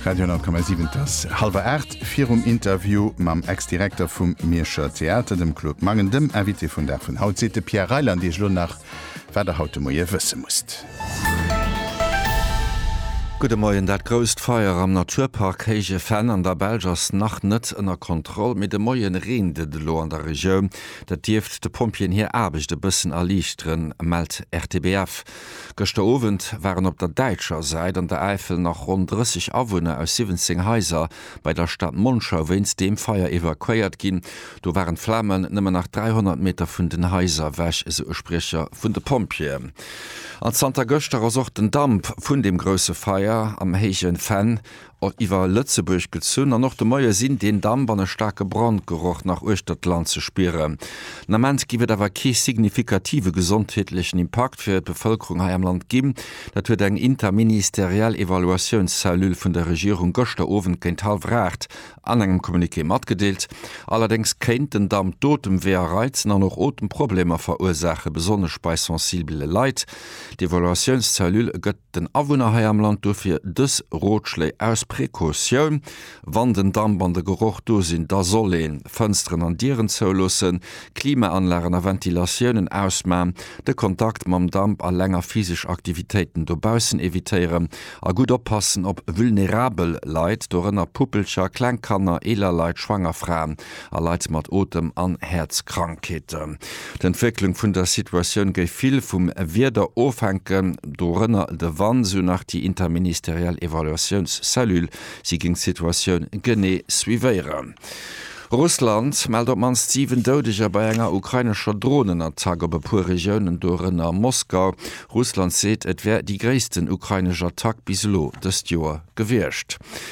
Radio 10,7 et ass hallwer 8. Virum Interview mam Ex-Direkter vum Mierscher Theater, dem Claude Mangen, dem Invité vun Dag vun haut, seet de Pierre Reyland Iech lo nach, wat Der haut de Moie wësse musst. Gudde Moien, Dat grousst Feier am Naturpark Héije Venn an der Belsch ass nach net ënner Kontroll, mee de Moie reent et elo an der Regioun. Dat dierft de Pompjeeën hir Aarbecht e bëssen erliichteren, mellt RTBF. Gëschter Owend waren op der däitscher Säit an der Äifel nach ronn 30 Awunner aus 17 Haiser bei der Stad Monschau wéinst deem Feier evakuéiert ginn. Do waren d'Flamen nëmmen nach 300 Meter vun den Haiser ewech, esou e Spriecher vun de Pompjeeën. An zanter gëschter ass och den Damp vun deem grousse Feier am Héije Venn iwwer Lëtzebuerg gezunn an och de Moie sinn deen Damp an e staarke Brandgeroch nach uechter d'Land ze spieren. Den Ament géif et awer kee signifikative gesondheetlechen Impakt fir d'Bevëlkerung hei am Land ginn. Dat huet eng interministeriell Evaluatiounscellule vun der Regierung gëschter Owend géint hallwer 8 an engem Communiqué matgedeelt. Allerdéngs kéint den Damp d'Otemweeër reizen an och Otemproblemer verursaachen, besonnesch bei sensibele Leit. D'Evaluatiounscellule gëtt den Awunner hei am Land dofir dës Rotschléi aus Precautioun, Wann den Damp an de Geroch do sinn, da soll een Fënsteren an Dieren zouloossen, Klimaanlagen a Ventilatiounen ausman, de Kontakt mam Damp a länger physesch Aktivitéiten dobaussen evitéieren a gutt oppassen op vulnerabel Leit, dorënner Puppelcher, kleng Kanner, eeler Leit, schwanger Fraen a Leit mat Otem an Häerzkrankheeten. D'Entwécklung vun der Situatioun géif vill vum Wieder ofhänken, dorënner de Wand, sou nach déi interministeriell Evaluatiounscellule. Si géing d'Situatioun genee suivéieren. Russland mellt op d'mannst 7 Doudeger bei enger ukrainescher Dronenattack op e puer Regiounen, dorënner Moskau. Russland seet, et wär déi gréissten ukrainesch Attack bis elo dëst Joer gewiescht.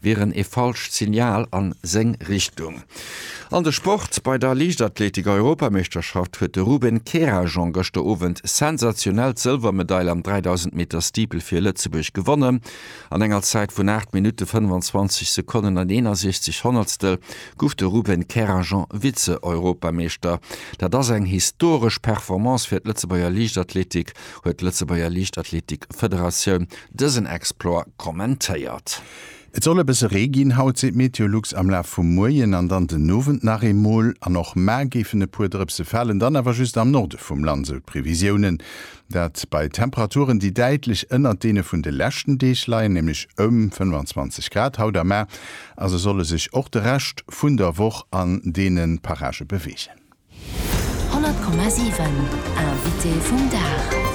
wieren ee falscht Signal a seng Richtung. An de Sport, Bei der Liichtathletik-Europameeschterschaft huet de Ruben Kerajan gëschter Owend sensationell d'Sëlwermedail am 3000 Meter Steeple fir Lëtzebuerg gewonnen. An enger Zäit vun 8 Minutte 25 Sekonnen an 61 Honnertstel gouf de Ruben Kerajan Vize-Europameeschter. Dat ass eng historesch Performance fir d'Lëtzebuerger Liichtathletik, huet d'Lëtzebuerger Liichtathletik-Federatioun dësen Explore kommentéiert. Et soll e bësse Ree ginn haut, seet Meteolux, am Laf vum Moien an dann den Owend nach eemol. An och ma géifen e puer Drëpse falen, dann awer just am Norde vum Land, esou d'Previsiounen. Dat bei Temperaturen, déi däitlech ënnert deene vun de leschten Deeg leien, nämlech ëm 25 Grad haut. A ma also solle sech och de Rescht vun der Woch an deene Parage beweegen. 100,7 Invité vum Dag.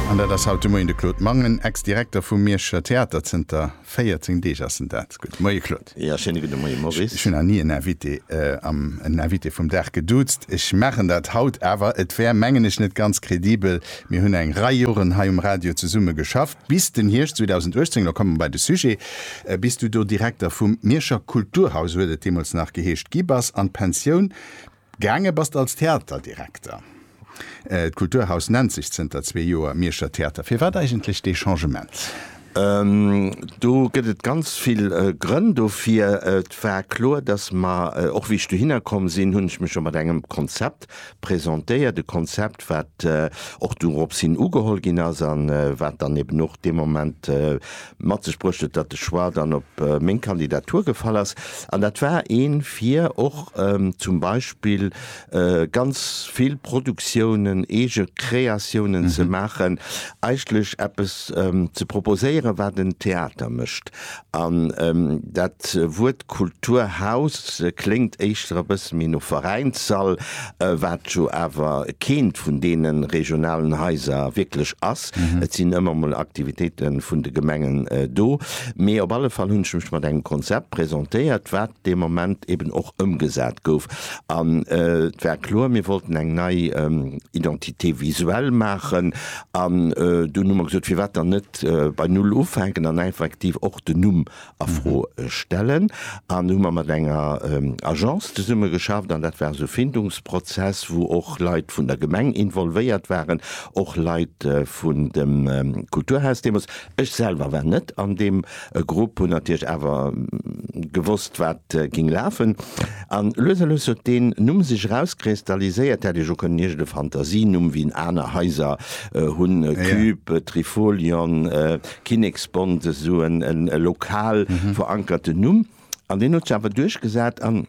An dat ass haut de Moien de Claude Mangen, Ex-Direkter vum Mierscher Theater. Zënter 14 Deeg ass en dat. Gudde Moie Claude. Jo, schéine gudde Moie Maurice. Ech hunn nach ni en Invité am en Invité vum Dag geduuzt. Ech maachen dat haut awer. Et wär, mengen ech, net ganz kredibel. Mir hunn eng Rei Joren hei um Radio zesumme geschaff. Bis den Hierscht 2018, lo komme mer bei de Sujet, bis du do Direkter vum Mierscher Kulturhaus, esou huet et deemools nach geheescht, gi bass an d'Pensioun gaange bass als Theaterdirekter. D'Kulturhaus nennt sech zënter zwee Joer Mierscher Theater. Firwat eigentlech dee Changement? Do gëtt et ganz vill Grënn dofir. Et war kloer, dass mer, och wéi ech dohinner komm sinn, hunn ech mech scho mat engem Konzept presentéiert, e Konzept, wat och dorop hin ugeholl ginn ass a wat dann eben och dee Moment mat sech bruecht huet, datt de Choix dann op meng Kandidatur gefall ass. An dat war ee fir och zum Beispill ganz vill Produktiounen, eege Kreatiounen ze maachen, eigentlech eppes ze proposéieren, wat en Theater mécht. An dat Wuert Kulturhaus kléngt éischter e bësse méi no Veräinssall, wat jo awer keent vun deene regionalen Haiser wierklech ass. Et sinn ëmmer mol Aktivitéite vun de Gemengen do, mee op alle Fall hunn ech mech mat engem Konzept presentéiert, wat dee Moment eben och ëmgesat gouf. An et war kloer, mir wollten eng nei Identité visuelle maachen. An dunn hu mer gesot, firwat dann net bei Null ufänken an effektiv och den Numm a Fro stellen. An hu mer mat enger Agence zesummegeschafft, an dat war esou e Findungsprozess, wou och Leit vun der Gemeng involvéiert waren, och Leit vun dem Kulturhaus deemools. Ech selwer war net an deem e Grupp hunn natierlech awer gewosst, wat géing lafen. An lues a lues huet deen Numm sech erauskristalliséiert. Hätt ech och kënnen iergende Fantasienumm wien aner Haiser hunn, Cube, Trifolion, Kinneksbond, esou e lokal verankerten Numm. An deen huet sech awer duerchgesat. An.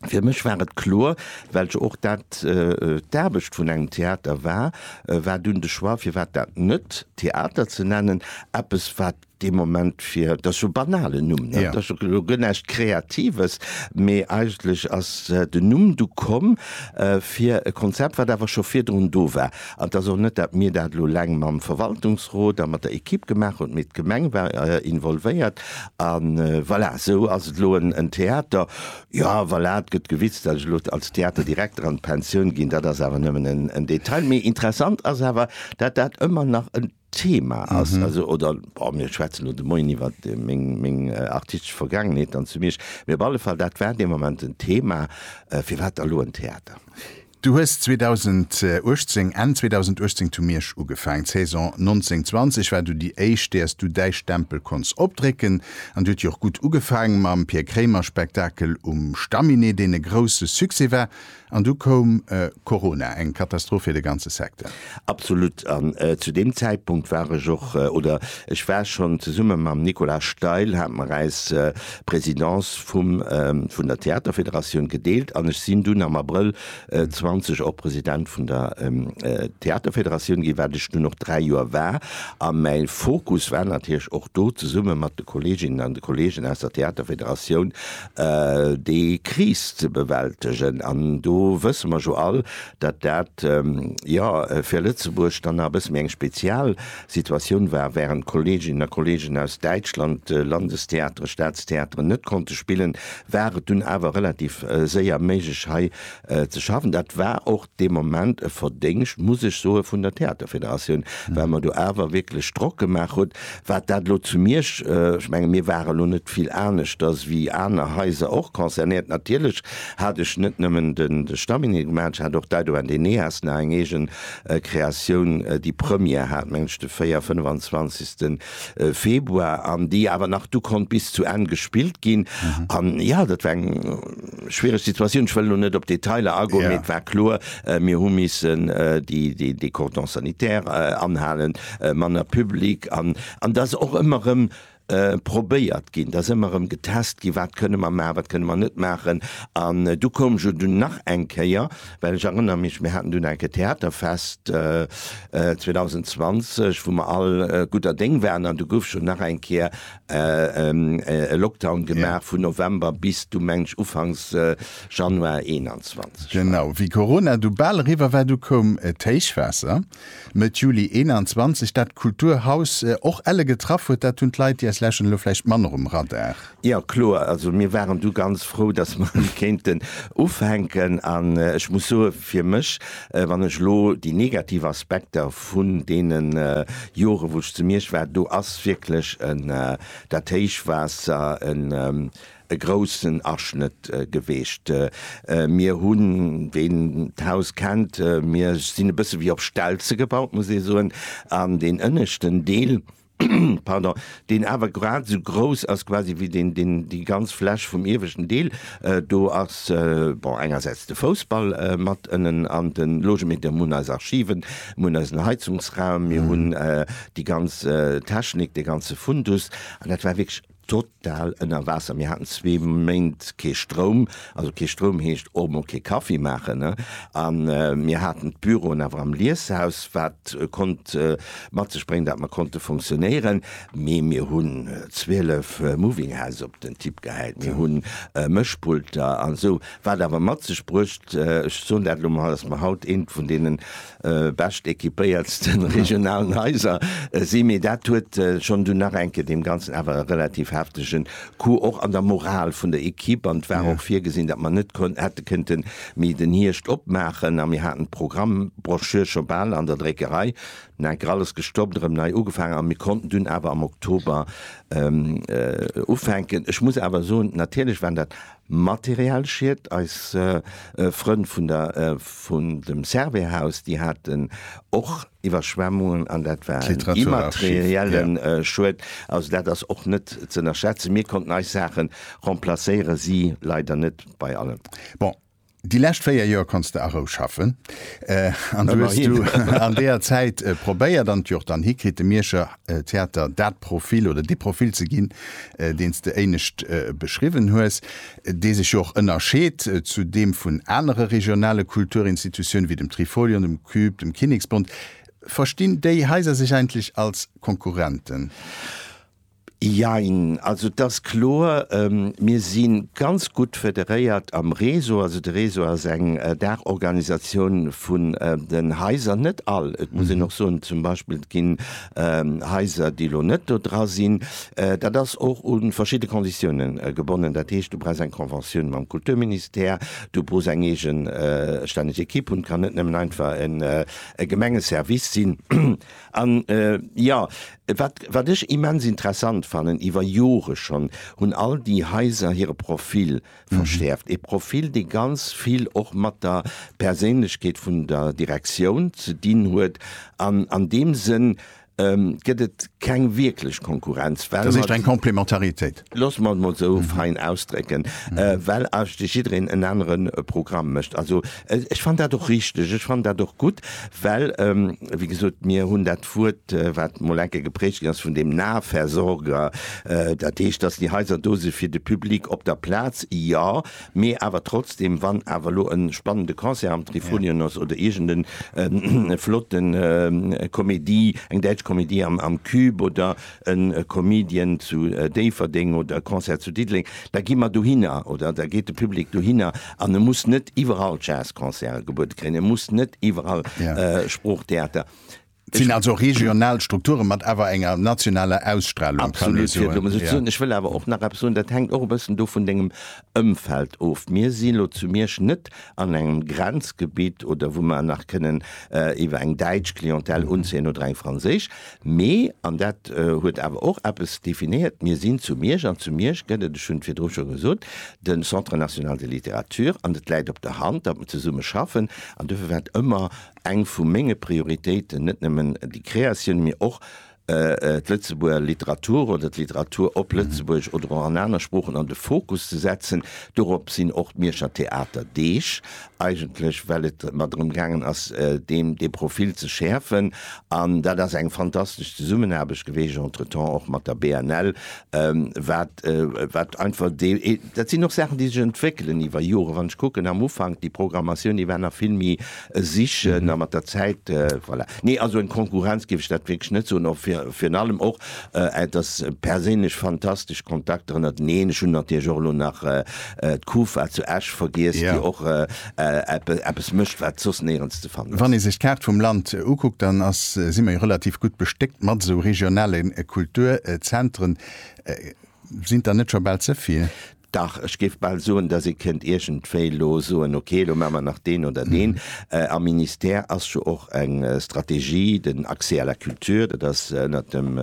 Fir mech war et kloer, well jo och dat d'Aarbecht vun engem Theater war, war dunn de Choix, firwat dat net Theater ze nennen, eppes wat dee Moment fir, dat ass jo e banalen Numm, dat ass jo elo guer näischt Kreatives, mee eigentlech ass den Numm du komm fir e Konzept, wat awer scho virdrun do war. An et ass och net, datt mir dat elo eleng mam Verwaltungsrot a mat der Ekipp gemaach hunn, mee d'Gemeng war involvéiert. A voilà, esou ass et elo en Theater. Jo, voilà, et gëtt gewitzt, datt ech elo als Theaterdirekter an d'Pensioun ginn, dat ass awer nëmmen en Detail. Mee interessant ass awer, datt dat ëmmer nach en. Thema ass, also oder bon, mir schwätzen lo de Moien iwwer meng, meng artistesch Vergaangenheet an zu Miersch, mee op alle Fall dat war dee Moment en Thema, firwat da lo en Theater? Du hues 2018, Enn 2018 zu Miersch ugefaangen, d'Saison 1920 war du déi éischt, där s du däi Stempel konnts opdrécken an déi huet jo och gutt ugefaangen, mam Pir Kréimer-Spektakel um Stamminet, deen e grousse Succès war. An du koum Corona, eng Katastroph fir de ganze Secteur. Absolut. An zu deem Zäitpunkt war ech och, oder ech war schonn, zesumme mam Nicolas Steil hate mer eis Présidence vum vun der Theaterfederatioun gedeelt an ech sinn dunn am Abrëll 20 och President vun der Theaterfederatioun ginn, wat ech dunn och dräi Joer war. A mäi Fokus war natierlech och do, zesumme mat de Kolleeginnen an de Kolleegen aus der Theaterfederatioun, déi Kris ze bewältegen. An do wësse mer jo all, datt dat, jo, fir Lëtzebuerg dann nach e bësse méi eng Spezialsituatioun war, wärend d'Kolleeginnen a Kolleegen aus Däitschland Landestheatere, Staatstheateren net konnte spillen, war et dunn awer relativ séier méiglech hei ze schaffen. Dat war och dee Moment e Verdéngscht, muss ech soen, vun der Theaterfederatioun, well mer do awer wierklech Drock gemaach hunn, wat dat elo zu Miersch, ech menge mir ware lo net vill aneschters wéi aner Haiser och concernéiert, natierlech hat ech net nëmmen de Stamminet gemaach, ech hat och d'Aido an d'Eneas nach eng eegen Kreatioun, déi Première hat, meng ech, de véier-, fënnef-an-zwanzigsten. Februar an déi awer nach du konnt bis zu Enn gespillt ginn. An jo, dat war eng schwiereg Situatioun. Ech wëll elo net op d'Detailer agoen, mee et war kloer, mir hu missen de Cordon sanitaire anhalen, manner Public. An et ass och ëmmer erëm probéiert ginn, et ass ëmmer erëm getest ginn, wat kënne mer maachen, wat kënne mer net maachen. An du koum jo dunn nach eng Kéier. Well ech erënnere mech, mir haten dunn enk e Theaterfest 2020, wou mer all gudder Déng waren an du gouf schonn nach eng Kéier e Lockdown gemaach vun November bis du, mengen ech, ufanks Januar 2021. Genau. Wéi Corona du bal eriwwer war, du koum d'Héichwaasser. Mëtt Juli 21, dat Kulturhaus och elle getraff huet, dat hunn d'Leit, déi eis lauscheren, elo vläicht manner um Radar. Jo, kloer, also mir waren du ganz frou, datt mer elo kéinten ufänken. An ech muss soe fir mech, wann ech elo déi negativ Aspekter vun deene Jore wou ech zu Miersch war, do ass wierklech en dat Héichwaasser, en e groussen Aschnëtt geweecht. Mir hunn, ween d'Haus kennt, mir sinn e bësse wéi op Stelze gebaut, muss ee soen, an deen ënneschten Deel, pardon, deen awer grad esou grouss ass quasi wéi deen, deen, déi ganz Fläch vum ieweschten Deel, do ass, bon, engersäits de Foussball mat ënnen an de Logemedium, mir hunn eis Archiven, mir hunn eisen Heizungsraum, mir hunn déi ganz Technik, dee ganze Fundus an dat war wierklech Total ënner Waasser. Mir haten zwee Méint kee Stroum, also kee Stroum heescht och mol kee Kaffi maachen, ne? A mir haten d'Büroen awer am Lieshaus, wat konnt mat sech bréngen, datt mer konnte funktionéieren. Mee mir hunn 12 Moving House op den Tipp gehäit, mir hu Mëschpulter an esou, wat awer mat sech bruecht, ech soen dat elo mol, datt mer haut eent vun deenen bescht equipéiertsten regionalen Haiser sinn, mee dat huet schonn dunn nach enke deem Ganzen awer e relativ heftegen Coup och an der Moral vun der Equipe. An et war och virgesinn, datt mer net konn hätte kënnte méi den Hierscht opmaachen a mir haten d'Programmbrochure scho bal an der Dréckerei. Dunn enker alles gestoppt, erëm nei ugefaangen a mir konnten dunn awer am Oktober ufänken. Ech muss awer soen, natierlech waren dat Materialschied. Eis Frënn vun der vun dem Servais-Haus, déi haten och Iwwerschwemmungen an dat war en immaterielle Schued. Also dat ass och net z'ënnerschätzen. Mir konnten eis Saache remplacéieren, si leider net bei allen. Bon, Déi lescht 4 Joer konns de a Rou schaffen an du hues du an deeër Zäit probéiert an et jo och dann hikritt, dem Mierscher Theater dat Profil oder dee Profil ze ginn, deen s de éinescht beschriwwen hues, dee sech jo och ënnerscheet zu deem vun anere regionale Kulturinstitutioune wéi dem Trifolion, dem Cube, dem Kinneksbond. Verstinn déi Haiser sech eigentlech als Konkurrenten? Jein, also et ass kloer, mir si ganz gutt federéiert am Réseau. Also de Réseau ass eng Daachorganisatioun vun den Haiser, net all, et muss een och soen, zum Beispill et ginn Haiser, déi elo net do dra sinn. Dat ass och u verschidde Konditioune gebonnen, dat heescht, du brauchs eng Conventioun mam Kulturministère, du brauchs eng eegestänneg Ekipp hunn, et kann net nëmmen einfach e Gemengeservice sinn. An, jo, wat, wat ech immens interessant fannen, iwwer Jore schonn hunn all déi Haiser hire Profil verschäerft. E Profil, dee ganz vill och mat der Perséinlechkeet vun der Direktioun ze dinn huet. An an deem Sënn gëtt et keng wierklech Konkurrenz, well mer. Dat heescht eng Komplementaritéit. Loosse mer et mol esou fein ausdrécken, well ech de jiddereen en anere Programm mécht. Also ech fannen dat och richteg, ech fannen dat och gutt, well, wéi gesot, mir hunn dat Wuert, wat mol enke geprägt ginn ass, vun dem Nahversorger, dat heescht, dass déi Haiser do si fir de Public op der Plaz, jo, mee awer trotzdem, wann awer elo e spannende Concert am Trifolion ass oder iergend e flotte Comédie, eng däitsch Comédie am Cube oder e Comedian zu Déifferdeng oder e Concert zu Diddeleng, da gi mer dohinner oder da geet de Public dohinner an e muss net iwwerall Jazzconcerte gebuede kréien, e muss net iwwerall Sproochtheater. Et sinn also regional Strukturen, mat awer enger nationaler Ausstrahlung, kann ee soen. Absolut, fir et esou ze soen. Ech wëll awer och nach eppes soen, dat hänkt och e bëssen do vun dengem Ëmfeld of. Mir si lo zu Miersch net an engem Grenzgebitt oder wou mer nach kënnen iwwer eng däitsch Clientèle unzéien oder eng franséisch, Mee, an dat huet awer och eppes definéiert, mir sinn zu Miersch, an zu Miersch gëtt et, ech hunn et virdru scho gesot, de Centre national de littérature, an et läit op der Hand, datt mer zesumme schaffen. An duerfir war et ëmmer eng vu menge Prioritéiten, net nëmmen déi Créatioun, mee och d'Lëtzebuerger Literatur oder d'Literatur op Lëtzebuergesch oder och an aner Sproochen an de Fokus ze setzen. Dorop sinn och d'Mierscher Theaterdeeg eigentlech well et mer drëm gaangen ass deem dee Profil ze schäerfen an dat ass eng fantastesch Zesummenaarbecht geweesch entretemps och mat der BNL, wat wat einfach dee dat sinn och Saachen déi sech entwéckelen iwwer Joren. Wann ech kucken am Ufank déi Programmatioun déi war nach vill méi sichen a mat der Zäit voilà. Nee also eng Konkurrenz géif ech dat wierklech net soen, och virun allem och Et ass perséinlech fantastesch Kontakter ënnerteneen. Ech hunn natierlech och elo nach d'Kufa zu Esch vergiess, déi och eppes mécht, wat soss néierens ze fannen ass. Wann ee sech d'Kaart vum Land ukuckt, dann ass, si mer jo relativ gutt bestéckt mat esou regionale Kulturzentren. Sinn der net scho bal ze vill? Dach, ech géif bal soen, dass ee kënnt iergendwéi elo soen, ok, elo maache mer nach deen oder deen. Am Ministère ass jo och eng Strategie, den Accès à la culture, dat ass ënnert dem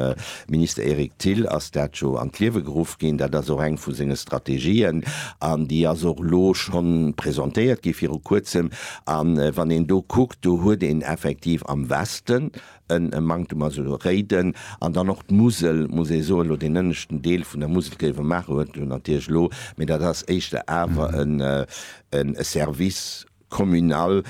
Minister Eric Thill ass dat jo an d'Liewe geruff ginn. Dat ass och eng vu senge Strategien an déi ass och elo schonn presentéiert gi viru Kuerzem. A wann een do kuckt, do huet een effektiv am Westen en Manktum ass elo Réiden an dann och d'Musel, muss ee soen, elo deen ënneschten Deel vun der Musel géife maachen, huet jo natierlech elo, mee dat ass éischter awer e Service communal,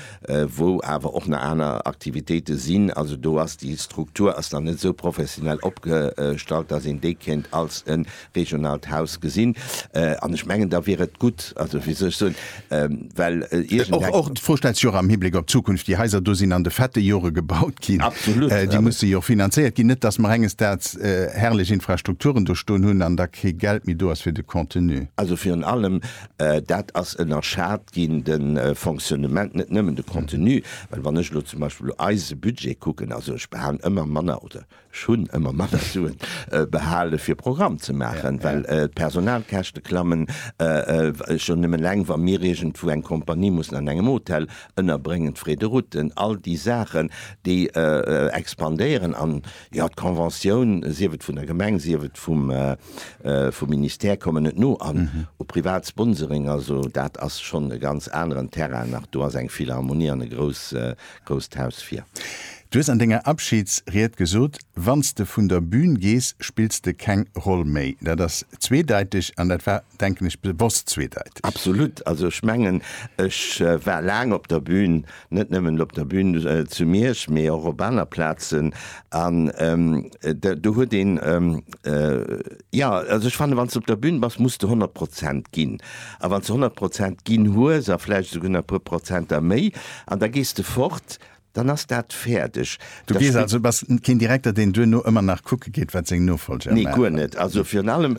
wou awer och nach aner Aktivitéite sinn, also do ass déi Struktur ass nach net esou professionell opgestallt, dass een déi kéint als e regionaalt Haus gesinn. An ech mengen, da wier et gutt, also wéi soll ech soen, well iergend eng. Och d'Fro stellt sech och am Hibléck op d'Zukunft. Déi Haiser do sinn an de fette Jore gebaut ginn. Absolut. Déi musse jo finanzéiert ginn. Net datt mer enges Daags herrlech Infrastrukturen do stoen hunn an da kee Geld méi do ass fir de Contenu. Also virun allem dat ass ënnerschat ginn, de Fonctionnement, net nëmmen de Contenu. Well wann ech elo zum Beispill eise Budget kucken, also ech behalen ëmmer manner oder. Ech hunn ëmmer manner Suen behale fir Programm ze maachen, well d'Personalkäschte klammen. Schonn nëmmen eleng wa mir iergendwou eng Kompanie mussen an engem Hotel ënnerbréngen, d'Frais de routen, all déi Saachen déi expandéieren. An jo, d'Conventioun, sief et vun der Gemeng, sief et vum Ministère, kommen net no. An u privat Sponsoring, also dat ass schonn e ganz aneren Terrain nach. Do ass eng Philharmonie an e grouss Grousst Haus fir. Du hues an denger Abschidsried gesot, wanns de vun der Bühn gees, spills de keng Roll méi. Dat ass zweedeiteg an dat war, denken ech, bewosst zweedeiteg. Absolut. Also ech mengen, ech war laang op der Bühn, net nëmmen op der Bühn zu Miersch, mee och op aner Plazen an do huet een, jo, also ech fannen, wanns de op der Bühn bass, muss de 100 Prozent ginn a wanns de 100 Prozent ginn hues a vläicht esouguer nach e puer Prozenter méi, An da gees de fort, dann ass dat fäerdeg. Du gees also, du bass keen Direkter, deen duerno ëmmer nach kucke geet, wat seng Nofolger maachen? Nee, guer net. Also virun allem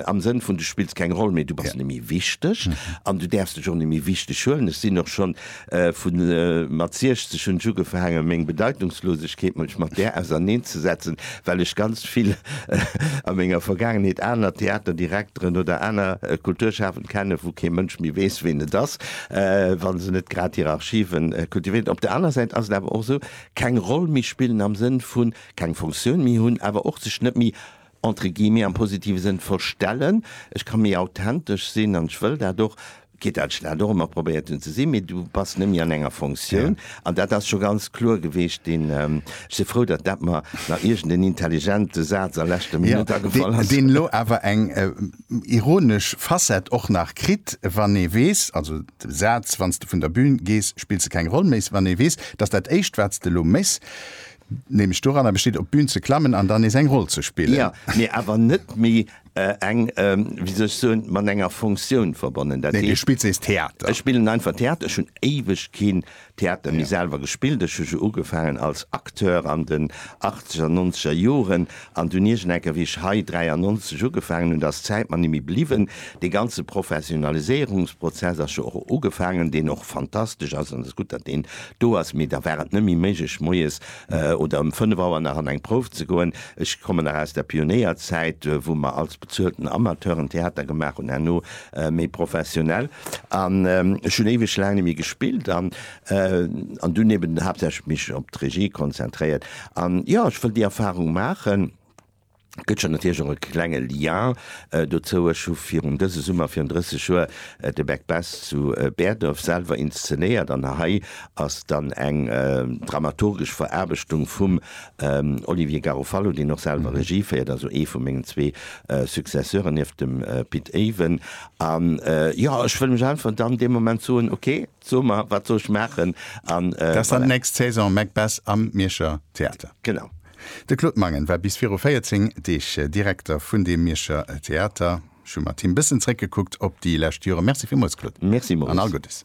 am Sënn vun, du spills keng Roll méi, du bass net méi wichteg an du däerfs dech och net méi wichteg huelen. Ech sinn och schonn vu mat 60 hunn ech ugefaangen, meng Bedeitungslosegkeet munch mat där auserneen ze setzen, well ech ganz vill a menger Vergaangenheet aner Theaterdirekteren oder aner Kulturschafend kennen, wou kee Mënsch méi weess, ween et ass. wa se net grad hir Archive kultivéieren. Op der anerer Säit ass et awer och esou, keng Roll méi spillen am Sënn vu keng Funktioun méi hunn, awer och sech net méi, entre guillemets, am positive Sënn verstellen. Ech ka méi authentesch sinn an ech wëll dat och, quitte à ce que dat och ëmmer probéiert hunn ze sinn, mee du bass net méi an enger Funktioun. An dat ass scho ganz kloer geweecht. Ech si frou, datt dat mer nach iergend en intelligente Saz a leschter Minutt agefall ass. Deen elo awer eng ironesch Facette och nach kritt, wann ee weess, also de Saz, wann s de vun der Bühn gees, spills de keng Roll méi, wann ee weess, dass dat éischt, wat s de elo méchs, nämlech doranner besteet, op d'Bühn ze klammen an dann nees eng Roll ze spillen. Jo, mee awer net méi eng, wéi soll ech soen, mat enger Fonctioun verbonnen. Dat heescht. Nee, du spills nees Theater. Ech spillen einfach Theater. Ech hunn éiweg keen Theater méi selwer gespillt. Ech hu jo ugefaangen als Acteur an den achtzeger, nonzeger Joren an dunn iergendenker, wéi ech hei 93 ugefaangen hunn, da ass d'Zäit mer nemme bliwwen. Dee ganze Professionaliséierungsprozess ass jo och ugefaangen, deen och fantastesch ass an et ass gutt, datt deen do ass, mee da war et nemme méiglech moies oder ëm fënnef Auer nach an eng Prouf ze goen. Ech kommen nach aus der Pionéierzäit, wou mer als bezuelten Amateur en Theater gemaach hunn. Herno méi professionell an ech hunn éiweg laang net méi gespillt an an dunn eben haaptsächlech mech op d'Regie konzentréiert an jo ech wëll déi Erfahrung maachen. Gëtt jo natierlech och e klenge Lien dozou, ech hu virun dëse Summer virun 30 Joer de Back Best zu Bäerdref selwer inszenéiert an hei ass dann eng dramaturgesch Veraarbechtung vum Olivier Garofalo, deen och selwer Regie féiert, also ee vu mengen zwee Successeuren nieft dem Pit Aven. A jo, ech wëll mech einfach dann dee Moment soen, ok, so mer, wat soll ech maachen? A voilà. Nächst Saison Macbeth am Mierscher Theater. Genau. De Claude Mangen war bis viru 14 Deeg Direkter vun deem Mierscher Theater. Ech hu mat him bëssen zréckgekuckt op déi lescht Joren. Merci villmools, Claude. Merci, Maurice. An all Guddes.